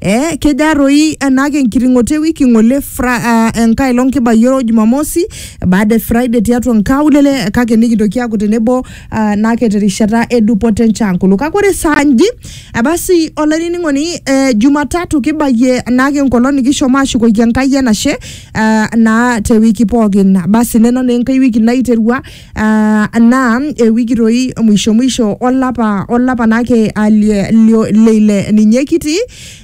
Eh, keja toi enake enkiting'oto ewiki ng'ole fra, uh, enkae long kibayioro Jumamosi baada e Friday tiatua nkaulele kake nikintoki aaku tenebo uh, nake terishata edupoto enchankulu kake ore saa nji eh, basi olainining'oni eh, Jumatatu kibayie naake enkolong nikishomo ashukoki Enkai enashe uh, naa te wiki pookin basi nena naa enkai wiki naiterua Ah, naa ewiki toi mwisho mwisho olapa olapa naake ah, lie- lio- leile ninye kitii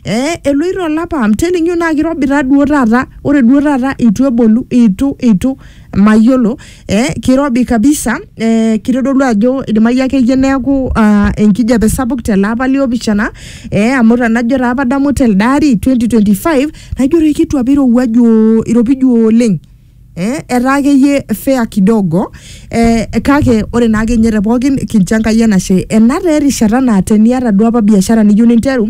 eh, eloito olapa I'm telling you naa kirobita duo taata ore duo taata itu ebolu itu itu mayiolo eh, kirobi kabisa eh, kitodolu ajo idimayu akeyie neeku ah, enkijape sapuk tele apa liopishana eh, amu tenajo taa padamu telde ari 2025 najo toi kitu apa irowuaju iropiju oleng eh, etaa akeyie fair kidogo eh, kake ore naa akenye te pookin kincho Enkai enashe ena taa erishata naa teniata duo apa biashara niyieu ninteru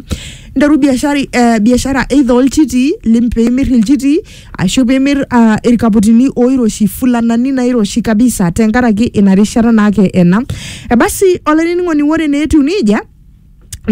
nteru biashara eh, biashara either olchiti lim piimir ilchiti ashu piimir ah, irkaputini oiroshi fulanani nairoshi kabisa tenkaraki ina rishata naake ena ebasi olainining'oni ore naa etiu nejia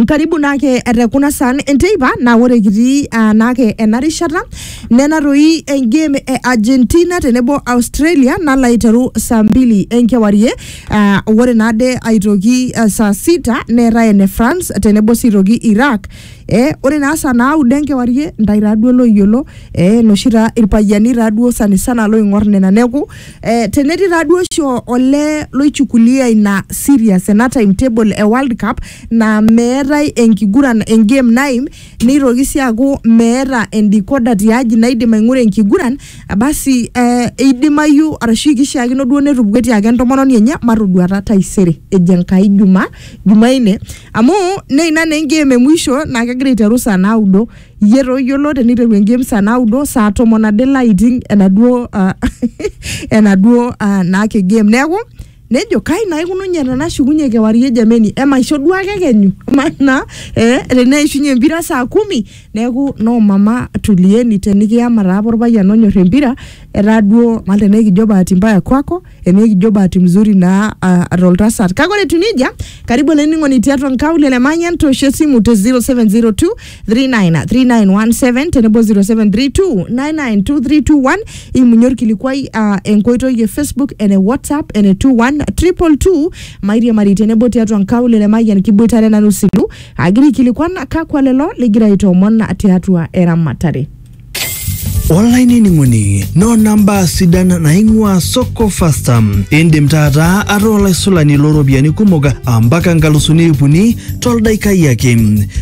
karibu naake te kuna saan enteipa naa ore kitii uh, naake ena rishata nena toi engame e Argentina tenebo Australia nalo aiteru saa mbili enkewarie uh, ore naade aitoki uh, saa sita neetae ene France tenebo sii toki Iraq eh, ore naa saa naudo enkewarie ntae taaduo loyiolo eh, noshi taa irpayiani taaduo sanisana loing'or nena neku Eh, tenetii taaduo oshi o- olee loichukulia ina serious ena timetable e world cup naa meetae enkiguran engame naim neitoki sii aaku meeta endikoda tiaji naidim aing'ura enkiguran eh, basi eh, eidimayu arashu kishiakino duo netupukuo etiaki entomononi enye matoduata taisere ejo enkai juma jumaine amu neina naa engame e mwisho naa kegira aiteru saa naudo Iyie taa oyiolo teniteru engame saa naudo saa tomon ade ilo aiting enaduo uh, enaduo uh, naake game neeku nejo kai naa ikununye tenashukunye kewarie jameni emaisho duo ake kenyu maana eh, teneishunye empira saa kumi neeku no mama tulieni tenikiyama taa apa orpayian onyorr empira etaa duo mal tenaa ekijo bahati mbaya kwako enikijo bahati mzuri naa uh, toltasat kake ore etiu nejia karibu olainining'oni tiatua nkaulele manyan toosho esimu te 0702 393917 tenebo 0732 992321 imunye orkilikuai uh, enkoitoi e facebook ene whatsapp ene 21222 mairiamari tenebo tiatua nkaulele mayian kiboitare nanu silu agira aikilikuan kakwa lelo ligira aitoomon tiatua eramatare olainining'oni noo namba sidan naing'ua soko fasta indim taata ataa olaisulani looropiyiani kumok ampaka nkalusuni iip uni toldaikai ake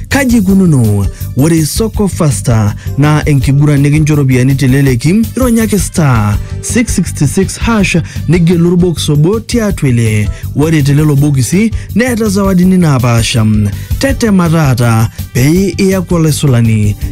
kaji ikununo ore soko fasta naa enkiguran nikincho ropiyiani teleleki ironyaki star 666 hash nigelu orbokis obo tiatua ele ore telelo bokisi neeta zawadini naapaasha tetema taata pee iyaku olaisulani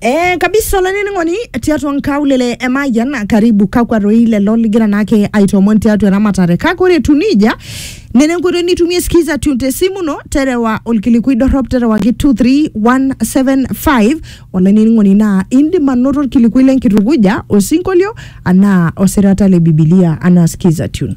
Eh, kabisa olainining'oni tiatua nkaulele emayian karibu kakwa roi lelo ligira naake aitoomon tiatua eramatare kake ore etu nija nena enkoitoi nitumie skiza tune te simu ino terewa olkilikui dorrop terewaki 23175 olainining'oni naa indim anoto olkilikui lenkitukuja osinkolio anaa osirata le bibilia anaa skiza tune